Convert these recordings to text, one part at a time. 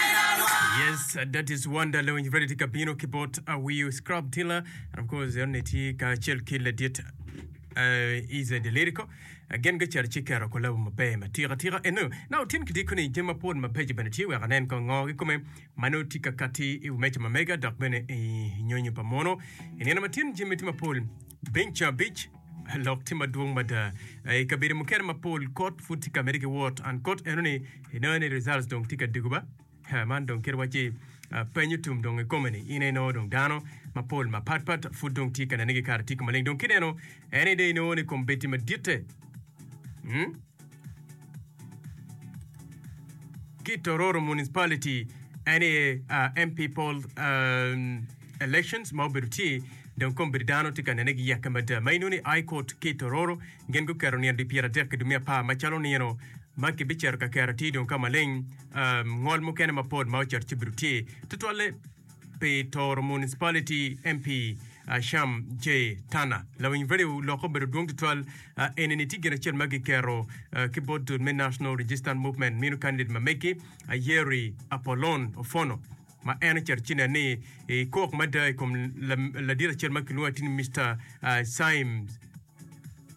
Yes, uh, that is Wonder Lewin ready to kabino ki bot Awiyo uh, Scrub Dealer and of course yon ne tye ka acel ki ladit uh, is a delirico uh, gen ga cer ci kero kolabo maber matika tika eno na otin ki diko ni jami mapol mabeco bene tye wek anen ko ngo ki kome mano tye ka kati i meca mamega dok bene i nyonyo pa mono i nino matin jami tye mapol Piny cabic, lok tye madwong mada I kabedo mukene mapol kot pud tye ka mede ki wot and kot eno ni inongo ni results dong tye ka dego ba Ha, man dong kit wacci penyo tum dong I kome ni ine inongo dong dano mapol mapat pat pud dong tye ka nene ki kare tiko maleng dong kit eno ene dong inongo ni kombeddi maditte. Hmm? ki Tororo Municipality ene uh, MP poll um, elections ma obedo tye dong kom bedo dano tye ka nene gi yakke mada ma inoni i Court ki Tororo gin guketo nino di pyera dek ki dumi apar macalo nino ma kibiceto ka kera tye dong ka maleng um, ngol mukene mapol ma oceto ci bedo tye tutwalle pi Toro Municipality, MP, Sham J. Tanner. Lawiny value lokke obedo dwong tutwal. Eni ni tye gin acel ma giketo ki bot dul me National Resistance Movement mino kandidet ma megi Ayeri Apolon Ofono ma en ocito ci nen ni ekok mada i kom ladit acel ma kilwongo atir ni Mister Symes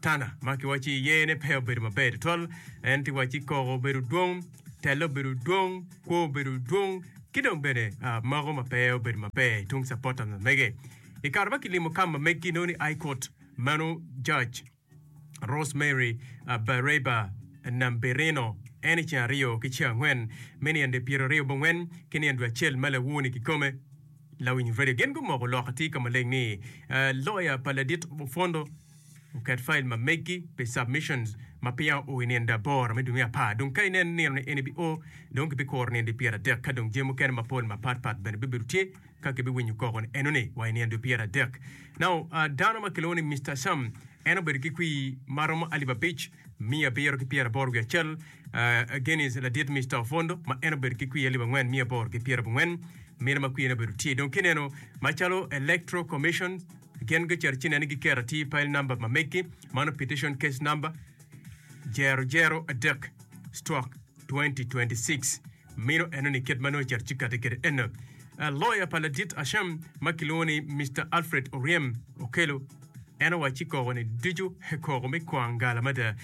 Tana ma kiwaco ci yene pe obedo maber tutwal, en ti waci koko obedo dwong, telle obedo dwong, kwo obedo dwong, ki dong bene mago ma pe obedo maber tung capotta ma mege. I kare ma kilimo kam ma meggi nongo ni High Court, meno Judge Rosemary Bareba Namberino en i ceng aryo ki ceng angwen me nino dwe pyeraryo bongwen ki nino dwe acel ma lawoo ni kikome. Lawiny Radio gin gumoko lok atir ka maleng ni loya pa ladit opwondo oket file ma meggi pi submissions ma peya oo i nino aboro me dwe me apar. Dong ka ineno nino ni en ibi oo, dong kibikuro nino dwe pyera dek ka dong jami mukene mapol mapat pat bene bibedo tye ka kibiwinyo koko ni enoni wa i nino dwe pyera dek. Now, dano ma kilwongo ni Mister Sam en obedo ki kwii maromo alip abic. miya abiro ki pyeraboro wiye acel, uh, Genis ladit me Stock Fund, ma en obedo ki kwiye alip angwen miya aboro ki pyerabongwen, mine ma kwiyene obedo tye. Dong kineno macalo Electoral Commission gin gicito ci nene giketo atir pile number ma meggi, mano petition case number, jero jero adek, stroke 2026. Meno enoni kit ma nongo cet ci kati kede en. Loya pa ladit Asham ma kilwongo ni Mister Alfred Oryem okelo, en owacci koko-ni ducu koko me kwangala mada.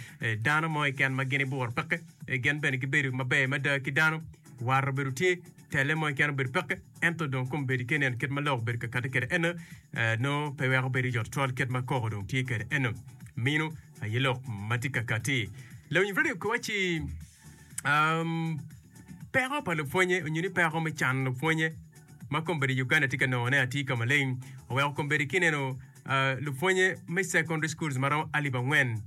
Dano mo keken ma gin ibworo peke, gin bene gibedo maber mada ki dano. War obedo tye, telle mo keken obedo peke, ento dong kombeddi ki ineno kit ma lok obedo ka kati kede en, nongo pe weko bedo yot twal kit ma koko dong tye kede en. Meno aye lok ma tye ka kati. Lawiny radio kiwacci. peko pa lupwonye onyo ni peko me cano lupwonye ma kombeddi i Uganda tye ka nongo ne atir ka maleng oweko kombeddi ki neno lupwonye me secondary schools ma romo alip angwen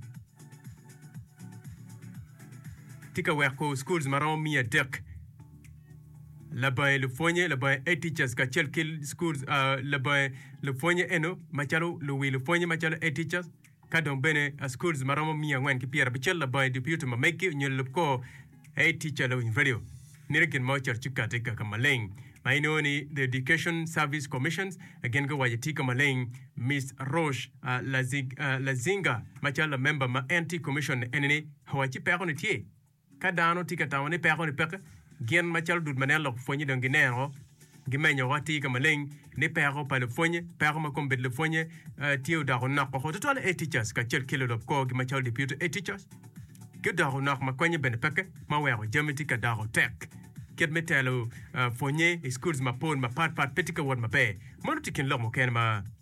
tye ka weko schools ma romo miya adek labange lupwonye labange eight teachers kacel ki schools labange lupwonye eno macalo luwi lupwonye macalo eight teachers Ka dong bene schools ma romo miya angwen ki pyera abicel labongo idye piyuto ma meggi onyo lelub kor aye tic calo winyo radio mito gin ma oceto ci kati kaka maleng ma inongo ni the education service commissions gin guwaco tika maleng miss Rosh Lazinga macalo lamember ma en tye commission eni ni owaci peko ni tye Ka dano tye ka tamo ni peko-ni peke, gin macalo dul ma nen lok pwonye dong gineno woko, gimenyo woko atir ka maleng ni peko pa lupwonye, peko ma kombedo lupwonye, tye odoko onok woko tutwal. Eticas kacel ki lulub korgi macalo dipyuto eticas gudoko onok ma konye bene peke ma weko jami tye ka doko tek. Kit me telo pwonye i schools mapol mapatpat pe tye ka wot maber. Mano tye kin lok mukene ma.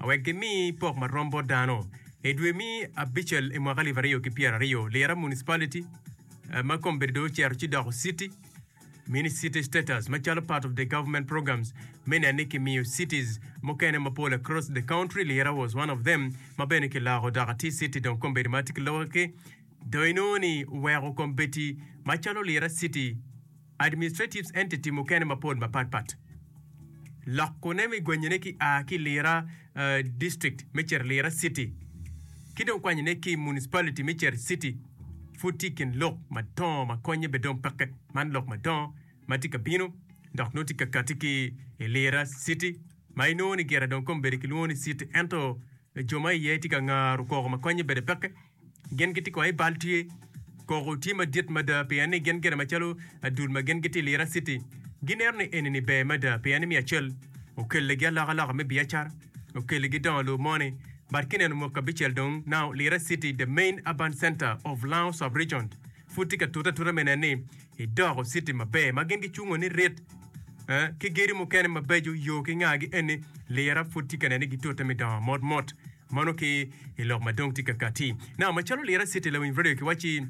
a wek gimi pok ma rom bot dano. I dwe me abicel i mwaka alip aryo ki pyera aryo, Lira Municipality, eh, ma kome bedo dong ocero ci doko citi, mini city status macalo part of the government programs me neno ni kimiyo cities mukene mapol across the country. Lira was one of them ma bene kiloko dok ati city dong kome bedo ma ati ki lokke ki dong inongo ni oweko kome beti macalo Lira city. Administrative entity mukene mapol mapat pat loko ne me gwenyo ne ki a ki Lira district me cito Lira city ki dong kwanyo ne ki municipality me cito city pud tye kin lok madongo ma konye be dong peke man lok madongo ma tye ka bino dok nongo tye ka kati ki i Lira city ma inongo ni gira dong kome bedi kilwongo ni city ento jo ma iye tye ka ngaro koko ma konye bede peke. Gin gitye kong i bal tye. Koko tye madit mada pien ni gin gire macalo adul ma gin gitye i Lira City. Gineno ni enini ber mada pien ni me acel, okeligi alokaloka me biacara, okeligi dongo lobo moni. But kineno mwaki abicel dong, now Lira City, the main urban centre of Lao sub-region, pud tye ka tute atuta me neno ni edoko city maber ma gin gicungo ni rit eh, ki gedo mukene mabeco yo ki ngagi eni Lira pud tye ka neno ni gitute me dongo mot mot. Mono ki i lok ma dong tye ka katti na, macalo Lira City, lawiny radio kiwacci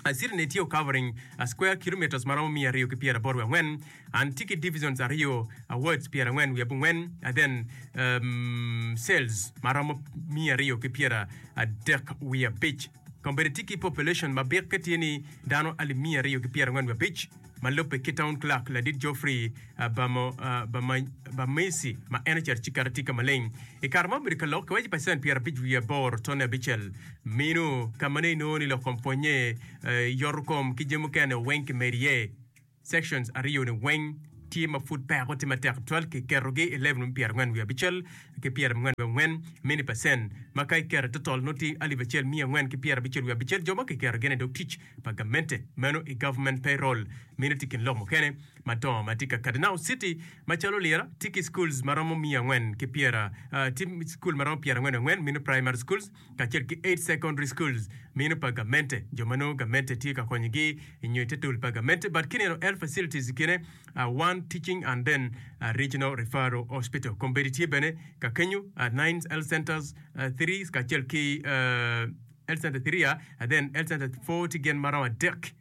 a city ni tye o covering a square kilometres maromo miya aryo ki pyera aboro wi angwen and tye ki divisions aryo a wards pyera angwen wi abungwen and then um cells maromo miya aryo ki pyera adek wi abic. Kombeddi tye ki population ma bikke tye ni dano alip miya aryo ki pyerangwen wiye abic ma lubbe ki Town Clerk Ladit Geoffrey Bamisi ma en ocito ci keto atika maleng i kare ma obedo ka lok ki waci pacent pyerabic wiye aboro tone abicel minu ka ma nongo inongo ni lok kom pwonye, yotokom ki jami mukene weng ki medo iye. Sections aryo-ni weng tye ma pud peko tye matek tutwal ki ketogi i level me pyera angwen wiye abicel ki pyera mangwen wiye angwen, mini percent, ma ka iketo i total nongo tye alip acel miya angwen ki pyera abicel wiye abicel jo ma kiketo gin i dog tic pa gamente, meno i government payroll. Mini tye kin lok mukene madongo ma tye ka kati. Now city macalo Lira tye ki schools maromo miya angwen ki pyera, tye school maromo pyera angwen wiye angwen, mini primary schools, kacel ki Eight Secondary Schools, mino pa gamente, jo ma nongo gamente tye ka konyogi i nyo i te tol pa gamente, but kineno health facilities kine, one teaching and then regional referral hospital, kombeddi tye bene ka kenyo, nine health centers, three kacel ki health center three, then health center four tye gin maromo adek.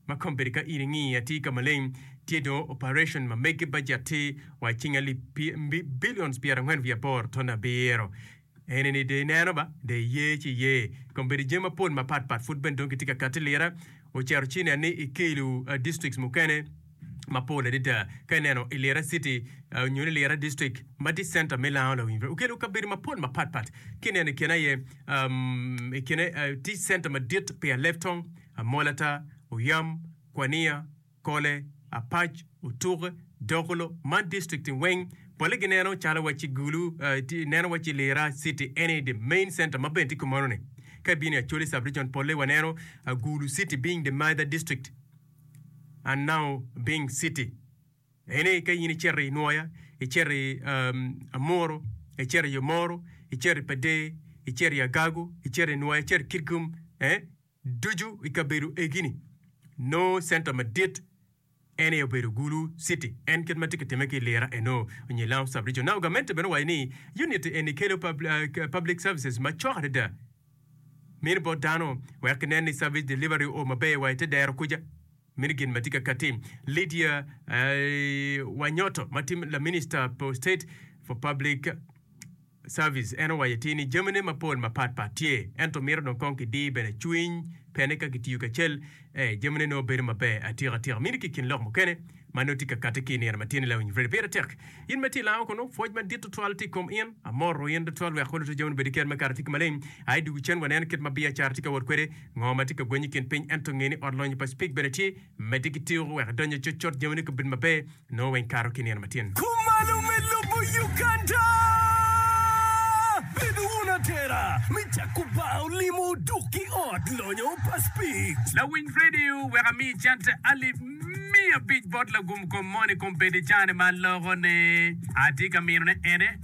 Ma kombeddi ka in ingi atir ka maleng, tye dong oparetion ma mege bajet tye wa i cing alip pi billions pyer angwen wiye aboro ton abiro. Ene ni de ineno ba, de iye ci iye. Kombeddi jami mapol mapat pat pud bene dong gitye ka kati lira. Ocero ci nen ni ikelo districts mukene mapol adada. Ka ineno i lira city nyo ni lira district ma tye center me Lango Lawiny, okelo kabedo mapol mapat pat. Ki ineno i kine aye, i kine tye center madit pi Alebtong, Amolata, Oyam, Kwania, Kole, Apac, Otuke, Dokolo, man distrikti weng pole gineno calo wa ci Gulu, eh, neno wa ci Lira city any the main center ma bene tye kumono ni. Ka ibino i Acholi subregion pole wa neno ah, Gulu city being the mother district and now being city. Ene ka in icito i Nwoya, icito i um, Amuro, icito i Omoro, icito i Padee, icito i Agago, icito i Nwoya, icito i Kitgum, eh, ducu i kabedo egi-ni nongo center madit en aye obedo Gulu City. En kit ma tye ka timme ki i Lira eno nyo i Lamu Sub-Region. Now gamente bene owaco ni unit eni kelo public services macok adada mini bot dano wek kinen ni service delivery o maber wa i te dero kuca. Mini gin ma tye ka katti. Lydia Wanyoto ma tye laminista for state for public Service, en owaco atir ni jamine mapol mapat pat tye ento mito dong kong kidir bene cwiny pene ka kitiyo kacel e jamine nongo bedo maber atika tika mini ki kin lok mukene ma nongo tye ka kati ki inino matin ni lawiny Freddy pire tek in ma tye ilango kunu pwoc madit tutwal tye ikom in amoro in tutwal wek luto jaminu bed iker me kato tye ki maleng aye dugu cen waneno kit ma biacara tye ka wot kwede ngo matye ka gwenyo ikin piny ento ngeni ot lonyo pa speak bene tye Medde ki tiko wek idonyo cutcut jamini kabedo maber nongo weng kato ki nino matyen. Kumalo me lobo Uganda! Bed wun atera me cako bar olimo dok ki ot lonyo pa Speed. Lawiny radio wek ami cente alip miya abic bot lagum kom moni kom bed i cane ma aloko ne. Atye ka mino ne ene.